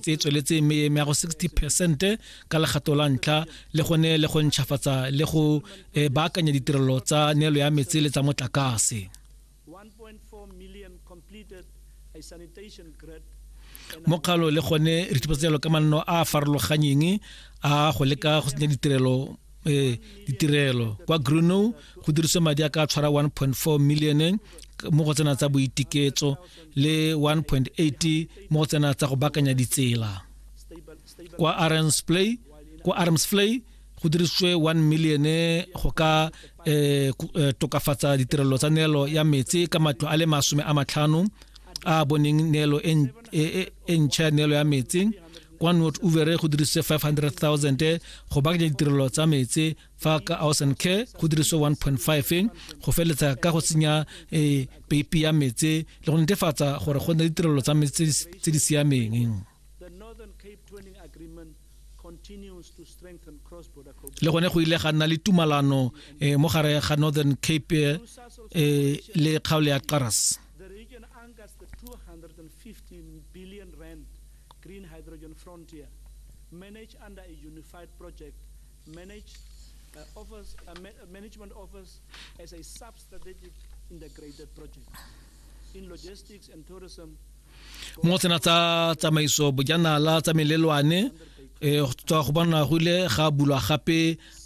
tse tsweletseng me ya go 60 percent ka legato la ntlha le gone le go ntšhafatsa le go eh, baakanya ditirelo tsa neelo ya metsi le tsa motlakase mokgalo le gone re tshupatsa jalo ka manno a a farologanyeng a go leka go tsenya ditirelo eh, ditirelo kwa gruno go diriswa madi a ka tshwara 1.4 million mo go tsena tsa boitiketso le 1.8 mo go tsena tsa go bakanya ditsela kwa armsplay kwa armsplay go dirisitswe 1 million go ka eh, eh, tokafatsa ditirelo tsa neelo ya metsi ka matlo a le masome a matlhano a boneng neelo e, e, e, e ntšha ya neelo ya metsi kwa not uvere go dirisitse 500 000 go bakanya ditirelo tsa metsi fa ka house and care go diriso 1.5 go feletsa ka go tsenya um peipi ya metse le go netefatsa gore go nne ditirelo tsa metse tse di siameng le gone go ile ga nna le tumalano eh, mo gare ga northern cape eh, le kgaolo ya qaras Green Hydrogen Frontier, managed under a unified project mo tsena tsa tsamaiso bojanala tsa melelwane e tswa go bona go ile ga bulwa gape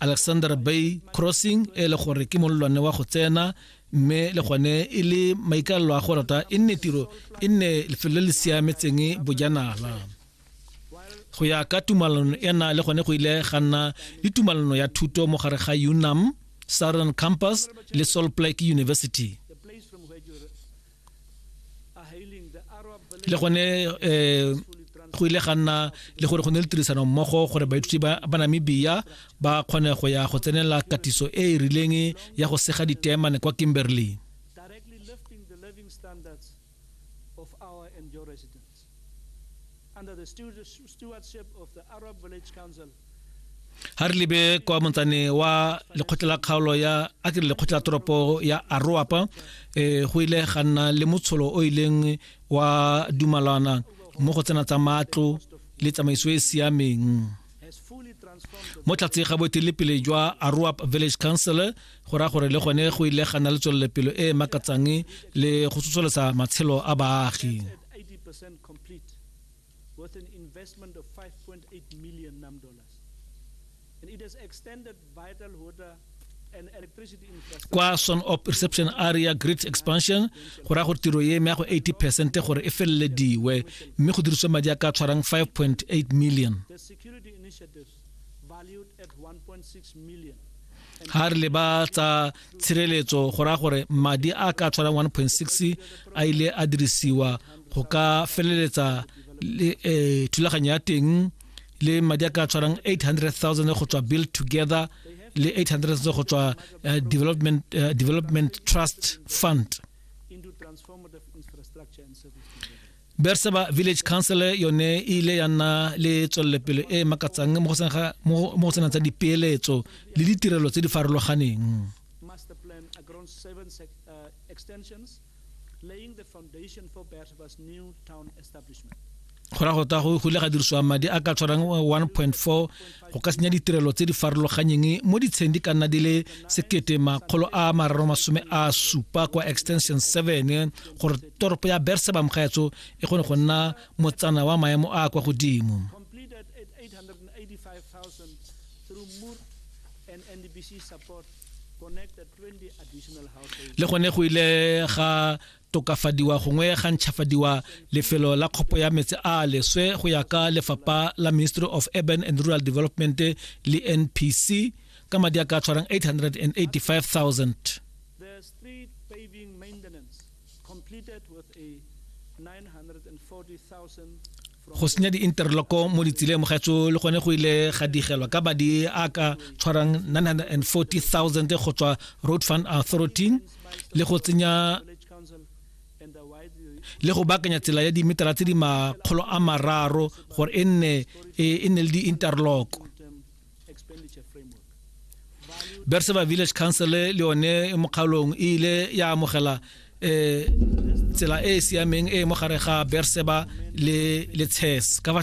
alexander bay crossing e le gore ke molelwane wa go tsena mme le gone e le maikaelelo a go rata e nne tiro e nne lefelo le le siametseng bojanala go ya ka tumalano ena le gone go ile ga nna le tumalano ya thuto mo gare ga unam southern campus le salt lake university le gone um go ile ga nna le gore go ne le tirisano mmogo gore baithuti ba namibia ba kgone go ya go tsenela katiso e e rileng ya go sega ditemane kwa kimberley ha re lebe kwa montsane wa lekgotla la kgaolo ya a ke lekgotla la toropo ya aroapa um eh, go ile ga nna le motsholo o ileng wa dumalana mo go tsena tsa matlo le tsamaiso e e siameng mo tlatse ga boetelepele jwa aroap village council go raya gore le gone go ile ga nna le tswelelepelo e e makatsang le go tsosolosa matshelo a baagi 80% complete with an investment of 5.8 million nam dollars. It has extended vital water and electricity infrastructure. kwa son op reception area grid expansion go raya gore tiro ye eme ya go 80 percent gore e felelediwe mme go diriswe madi a ka tshwarang 5.8 million The security initiatives ga re leba tsa tshireletso go raya gore madi a ka tshwarang 1.6 a ile a dirisiwa go ka feleletsa le eh, thulaganyo ya teng le madi a ka tshwarang 800000 go tswa build together le 800 go tswa eh, development eh, development trust fund berseba village council yone e ile ya nna le tswellepele e e makatsang mo go tsenang tsa dipeeletso le ditirelo tse di farologaneng go ra go ta go ile ga dirisiwa madi a ka tshwarang 1.4 go ka senya ditirelo tse di farologanyeng mo ditsheng di ka nna di le sekete makgolo a mararo masome a supa kwa extension 7 gore toropo ya berseba mokgaetso e kgone go nna motsana wa maemo a kwa godimo le gone go ile ga tokafadiwa gongwe ga ntšhafadiwa lefelo la kgopo ya metse a leswe go ya ka lefapha la ministry of urban and rural development le npc ka madi a ka tshwarang 885000 completed with a 940,000 go senya di-interloko mo ditseleng mogaetso le gone go ile ga digelwa ka madi a ka tshwarang 940000 go tswa road fund authority le go tsenya le go bakanya tsela ya dimetara tse di makgolo a mararo gore e nne e, e le di-interloko berseba village council le yone mokgaolong e ile ya amogela um tsela e e siameng e mo gare ga berseba le le chess ka fa